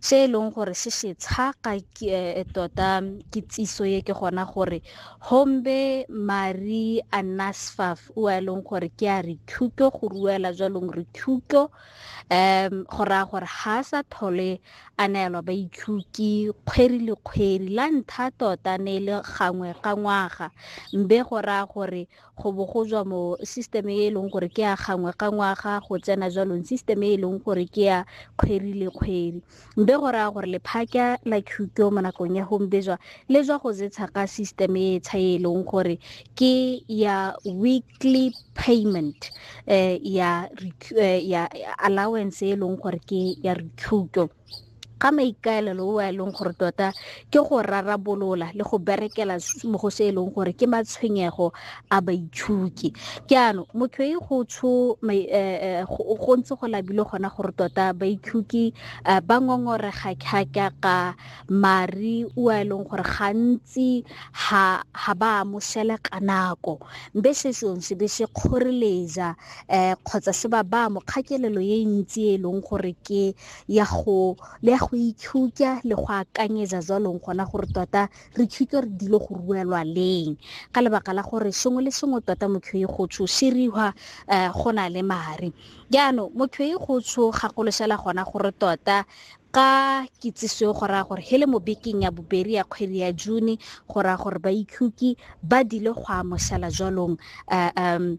se e leng gore se se tshaka eh, tota kitsiso ye ke gona gore hombe mari anasfaf o a e leng gore ke a re thuto go ruela jwalong re thuto um go raya gore ga a sa thole a neelwa baithuki kgweri le kgweri la ntha tota ne e le gangwe ka ngwaga mbe go raya gore go bo go jwa mo system e e leng gore ke ya gangwe ka ngwaga go tsena jwalong system e e leng gore ke ya kgwedi le kgwedi mbe go raya gore lephaka la qhuto mo nakong ya gombejwa le jwa go zetsha ka system e tsha e leng gore ke ya weekly payment eh, ya, eh, ya allowance e leng gore ke ya recuto ga maikaelelo o a e leng gore tota ke go rarabolola le go berekela mo go se e leng gore ke matshwenyego a baitshuki ke ano motho e go tsho eh, eh, go ntse go labile gona gore tota baitshuki eh, ba ngongorega kgaka ka mari o a e leng gore gantsi ha ha ba amoshele ka nako mbe se sone se be se kgoreletsa um kgotsa se ba ba mokgakelelo e ntsi e leng gore ke ya go le ya go itshutsa le go akanyetsa jwalong gona gore tota re tshutse re dilo go ruelwa leng ka lebaka la gore sengwe le sengwe tota motho e gotsho se riwa um eh, go na le mare jaanong motho e gotsho gakoloshela gona gore tota ka kitsiso go raya gore hele mo bekeng ya bobedi ya kgwedi ya june go raya gore ba ikhutsi ba dile go amoshela jwalong um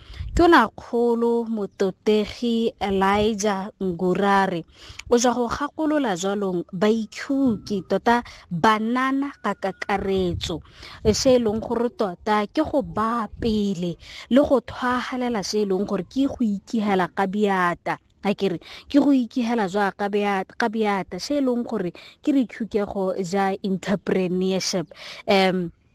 Tonakgolo Mototegi Elijah Ngurare o ja go gakolola jwalong baitshuki tota banana ka kakaretso se e leng gore tota ke go baa pele le go thwagalela se e leng gore ke go ikihela ka biata a kere ke go ikihela jwa ka beata se e leng gore ke dithukego ja entrepreneurship um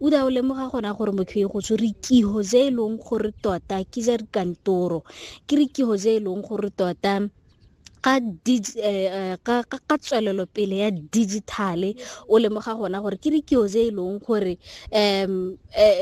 O ne a o lemoga gona gore motho e go tshwere kiho je e leng gore tota ke ja dikantoro ke re kiho je e leng gore tota ka eh, ka ka tswelelo pele ya digitale o lemoga gona gore ke dikio tse e leng gore um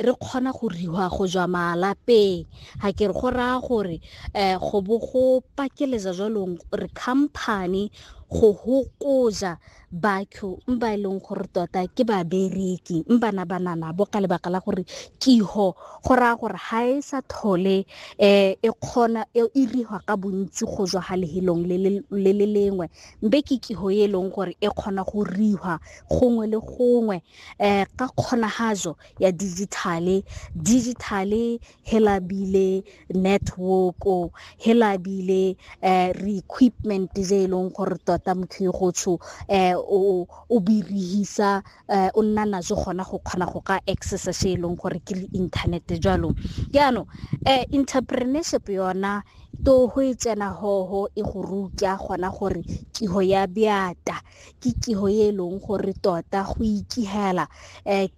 re kgona go riwa go jwa malapeng ga ke re go raya gore um go bo go pakeletsa jwalong re company go hokoja batho ba e leng gore tota ke babereki bana banana bo ka lebaka la gore kiho go raya gore ga e sa thole um e kgona e iriwa ka bontsi go jwa ga lehelong le le lengwe mbe ke kiho e leng gore e kgona go riwa gongwe le gongwe um ka kgonagatso ya digitale digitale he labile network-o he labile um re-equipment je e leng gore tota motho yo gotsho um o birihisa um o nna najo gona go kgona go ka accessa se e leng gore ke le internet jalo jaanong um entrepreneurship yona to go e tsena hoho e go rutya gona gore kiho ya beata ke kiho e leng gore tota go ikihela um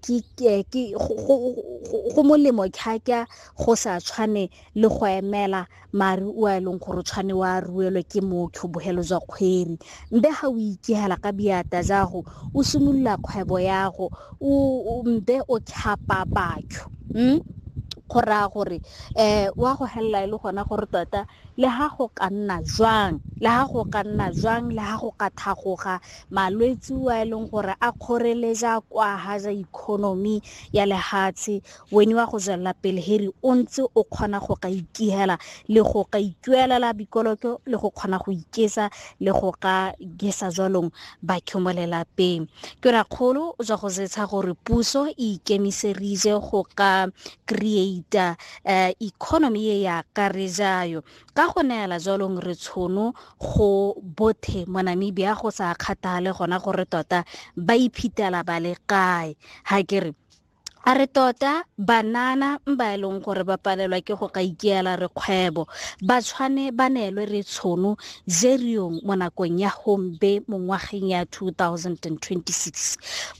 go molemo kgaka go sa tshwane le go emela mare o e leng gore o tshwane wa ruelwe ke motho bogelo jwa kgweri mbe ga o ikihela ka biata jago o simolola kgwebo yago mbe o tlhapa batho um go raya gore um wa go helela e le gona gore tota Le ha go ka nna jwang, le ha go ka nna jwang, le ha go ka thagoga malwetsi wa e leng gore a kgoreleja kwa ha ja economy ya lehatshe, weni wa go jalla pele heri o ntse o kgona go ka ikihela le go ka ikuelela bikoloko le go kgona go ikesa le go ka gesa jwalong bakhe mo lelapeng. Ke ra kgolo jwa go zetsha gore puso e ikemiserije go ka creator um economy e ya ka re jayo ka go neela jalong re tshono go bothe mo namibia go sa kgathale gona gore tota ba iphetela ba le kae ga ke re a re tota banana ba e leng gore ba palelwa ke go ka ikeela re kgwebo ba tshwane ba neelwe re tshono jeriong mo nakong ya hombe mo ngwageng ya 2026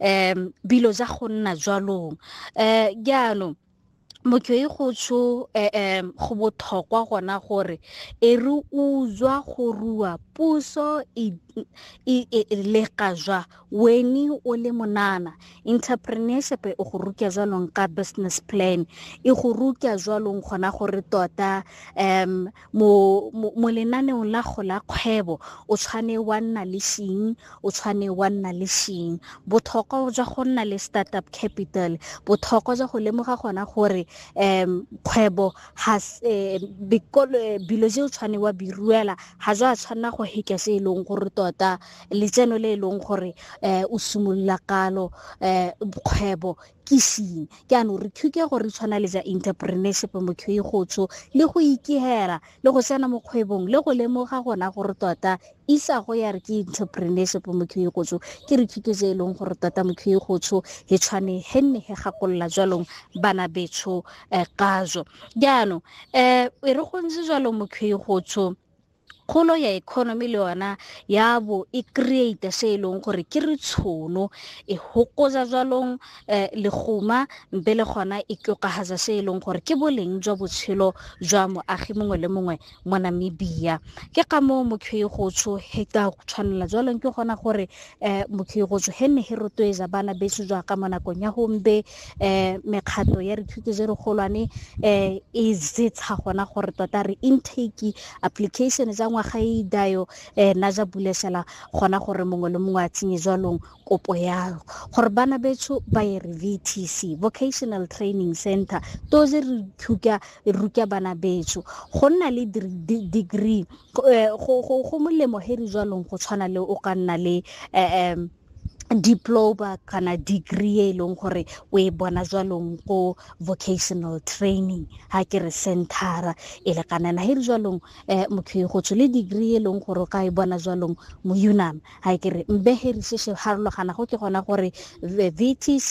um bilo ja go nna jwalong um jaanong motho e go tsho um go botlhokwa gona gore e re utswa go rua puso e, e, e, e lega jwa weni o le monana entrepreneurship e go ruka jwalong ka business plan e go ruka jwalong gona gore tota um mo, mo, mo lenaneong la go la kgwebo o tshwane wa nna le shing o tshwane wa nna le shing botlhokwa jwa go nna le startup capital botlhokwa jwa go lemoga gona gore um kgwebo has eh, bikolo eh, bilo je o tshwane wa biruela ga jwa tshwanela go heka se e leng gore tota letseno le e leng gore um o simolola kalo um kgwebo ke seng jaanong re thuke gore re tshwana le ja interpreneurship motho e gotsho le go ikegela le go tsena mo kgwebong le go lemoga gona gore tota isago ya re ke entrepreneurship motho e gotsho ke re thuto tse e leng gore tota motho e gotsho e tshwane he nne he gakolola jwalong bana betsho um eh, kajo jaanong um e re gontse jwalo motho e gotsho kgolo ya economy le yona ya bo e create se e leng gore ke re tshono e hokoza jwalong um eh, leguma mpe le gona e tlokagatsa se e leng gore ke boleng jwa botshelo jwa moagi mongwe le mongwe mo namibia ke ka moo mokhwei gotsho he ka tshwanela jwalong ke gona gore um eh, mokhwei gotsho he ne he rotloetsa bana beso jwa ka mo nakong ya gombe um mekgatlho ya dithuto je re golwane um e jetsha gona gore tota re intake application ja ngwaga e dayo um na ja bulesela gona gore mongwe le mongwe a tsenye jwalong kopo yalo gore bana betsho ba ye re vtc vocational training center to je re thuka ruka bana betsho go nna le degree eh, go molemo he re jwalong go tshwana le o ka nna le um diploma kana degree e leng gore o e bona jwalong ko vocational training ha ke re centera e le kanana he re jwalong um motho e go tsho le degree e leng gore o ka e bona jwalong mo unam ha ke re mbe he re se se harologana go ke gona gore vtc